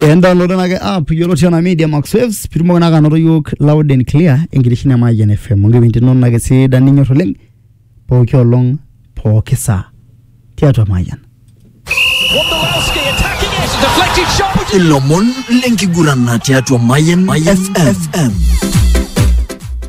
Endownload ena ke app yiolo oshi ena media max waves pitumoki naa anoto yiok loud and clear enkitesheni e Mayian FM onkipindini inonok ake sidan ninyor oleng pooki olong pooki saa tiatua Mayian. Wondolowski attacking it, deflected shot. Ilomon lenkiguran tiatua Mayan FM.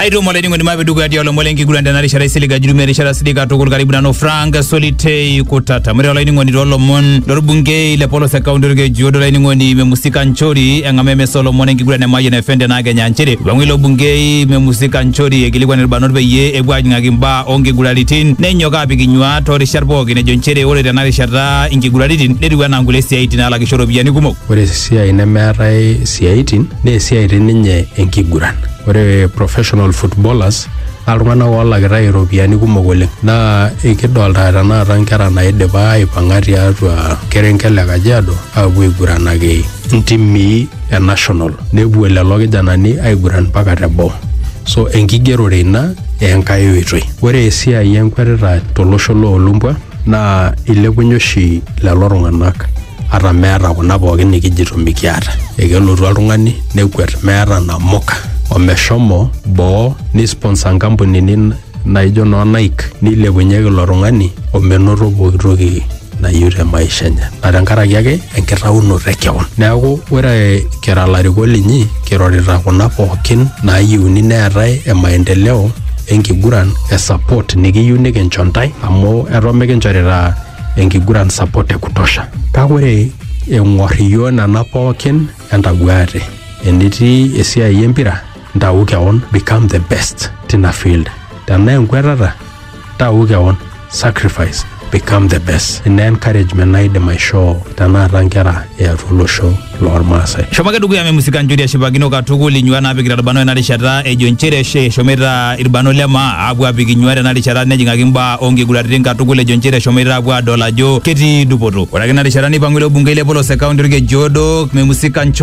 aitomo olainining'oni mape dukuya tialo lomon lenkiguran tena rishata isilig ajurumia erishata silig katukul karibu nanu frank solitei kutata mure olainining'oni toolomon lorbungei le polos e kaunti orkejuodo olainining'oni memusika nchori eng'ama emesa olomon enkiguran e mayian fm tenaa kenya nchere ipang'u ilo bungei memusika nchori ekilikuan irbanot peyie epuo ajing'aki imbaa onkiguraritin nenyok apik inyuaa toorishat pookin ejo nchere ore tena rishata inkiguraritin netiu enaa nkulie siaitin naalakisho iropiyiani kumok ore esiai nemeetae isiaitin naa esiai ti ninye enkiguran ore professional footballers naa iltung'anak oolakitai iropiyiani kumok oleng naa ikidolta tenakata nkera naidipa aipang'a tiatua kerenket le kajiado aapuo aiguranaki ntimii e national nepuo lelo kijanani aiguran mpaka teboo so enkigerore ina enkae oitoi ore esiai enkwetita tolosho loolumbwa naa ilepunye oshi lelo tung'anak ata meeta kuna pookin nikijito mikiata ekelotu oltung'ani nekwet meeta namuka omeshomo boo nisponsa nkampunini naijo noo Nike nilepunyeki ilo tung'ani omenoto pooki toki nayieu te maisha enye na tenkaraki ake enkitaunoto e kewon neeku ore kira larikok linyi kirorita kuna pookin naayieuni neetae e maendeleo enkiguran e support nikiyieu nikincho ntae amu eton mikinchorita enkiguran support e kutosha kake ore eng'or iyio nena pookin entaguaate enetii esiai empira ntau kewon become the best tina field tenaa enkwetata tau kewon sacrifice become the best ina encouragement naidim aishoo tenakata nkera eatua olosho lormaasai Shomo ake dukuya memusika njuri eshipakino katukul inyuat naapikita ilbarnot ena rishata ejo inchere eshe eshomoita ilbarnot le maa aapuo aapik inyuat ena rishata nejing'aki imbaa oonkiguraritin katukul ejo inchere eshomoita aapuo aadol ajo ketii dupoto. Ore ake ina rishata neipang'u ilo bungei le polos e kaunti olkeju odo memusika Nchuri